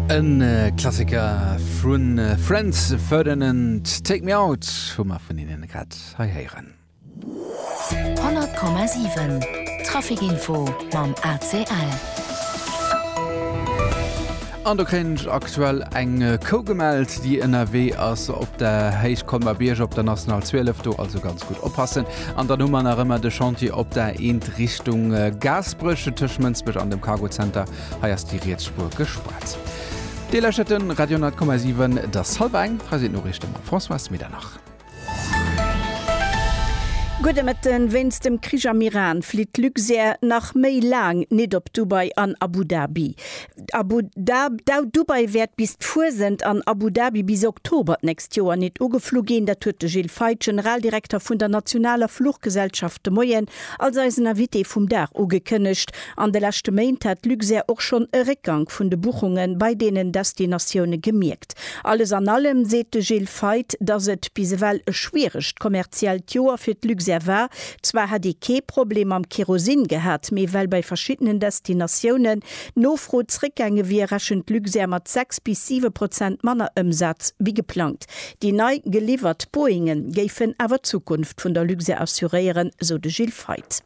E Klassiker vu Franz Ferdinand, Take Me Out hu mer vun hinnen grad hei héieren. 100,7 Trafic Info mam ACL. An do kréien ech aktuell eng Kou gemellt, déi ënnerwee ass op der Héicht Colmer Bierg op der National 12. Do also ganz gutt oppassen. An dann hu mer nach ëmmer de Chantier op der Eent Richtung Gaasperech, tëscht Mënsbech an dem Cargo Center. Hei ass déi riets Spuer gespaart. Dir lauschtert de Radio 10,7. Et ass hallwer eng. Hei sinn d'Noriichte mam Françoise Medernach. Gudde Mëtten. Wéinst dem Krich am Iran flitt d'Luxair nach méi laang nit op Dubai an Abu Dhabi. Abu Dab Dubai wäert bis d'Fuesent an Abu Dhabi bis Oktober d'nächst Joer nit ugeflu ginn. Dat huet de Gilles Feith, Generaldirekter vun der nationaler Fluchgesellschaft de Moien als eisen Invité vum Dag ugekënnegt. An de leschte Méint hat Luxair och schonn e Réckgank vun de Buchunge bei deenen Destinatioune gemierkt. Alles an allem seet de Gilles Feith, datt et bis ewell e schwieregt kommerziellt Joer fir d'Luxair war. Zwar hätt ee kee Problem mam Kerosin gehat, mee well bei verschiddenen Destinatiounen d'Nofro zréckgaange wier, rechent Luxair mat 6 bis 7 Prozent manner Ëmsaz wéi geplangt. Déi nei geliwwert Boeinge géifen awer d'Zukunft vun der Luxair assuréieren, sou de Gilles Feith.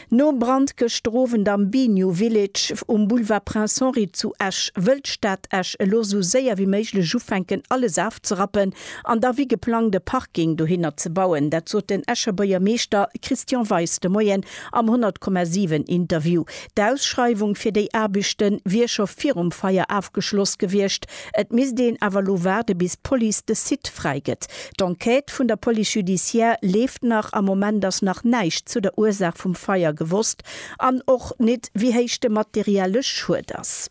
Nom Brand gëschter Owend am Biniou Village um Boulevard Prince Henri zu Esch, wëll d'Stad Esch elo sou séier wéi méiglech ufänken alles afzerappen an da wéi geplangt e Parking dohinner ze bauen. Dat sot den Escher Buergermeeschter Christian Weis de Moien am 100,7 Interview. D'Ausschreiwung fir déi Aarbechte wier scho virum Feier afgeschloss gewiescht. Et misst een awer elo waarde bis d'Police de Site fräi gëtt. D'Enquête vun der Police judiciaire leeft nach. Am Moment ass nach näischt zu der Ursaach vum Feier gewosst an och nit wéi héich de materielle Schued ass.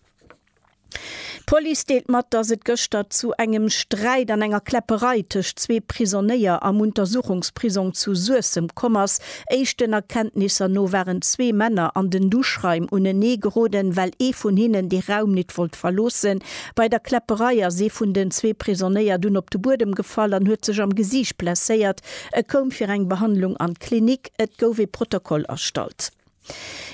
D'Police deelt mat, dass et gëschter zu engem Sträit an enger Kläpperei tëscht zwee Prisonéier am Untersuchungsprisong zu Suessem komm ass. Éischten Erkenntnisser no waren zwee Männer an den Duschraim unenee geroden, well ee vun hinnen de Raum nit wollt verloossen. Bei der Kläpperei ass ee vun den zwee Prisonéier dunn op de Buedem gefall an huet sech am Gesiicht blesséiert. E koum fir eng Behandlung an d'Klinik. Et gouf ee Protokoll erstallt.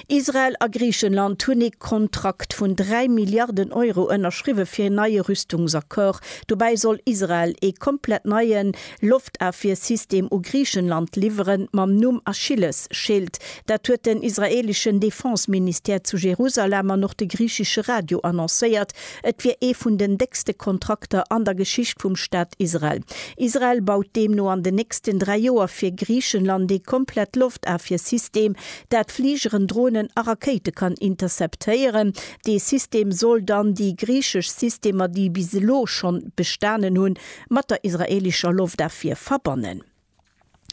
Israel a Griichenland hunn ee Kontrakt vun 3 Milliarden Euro ënnerschriwwe fir een neie Rüstungsaccord. Dobäi soll Israel ee komplett neien Loftafwiersystem u Griichenland liwweren, mam Numm Achilles-Schild. Dat huet den israeeleschen Defense-Ministère zu Jerusalem an och de griichesche Radio annoncéiert. Et wier ee vun den déckste Kontrakter an der Geschicht vum Staat Israel. Israel baut deemno an den nächsten dräi Joer fir Griichenland ee komplett Loftafwiersystem, dat Fligeren, Dronen a Rakéite kann interceptéieren. Dee System soll dann déi griichesch Systemer, déi bis elo schonn bestanen hunn, mat der israeelescher Loftafwier verbannen.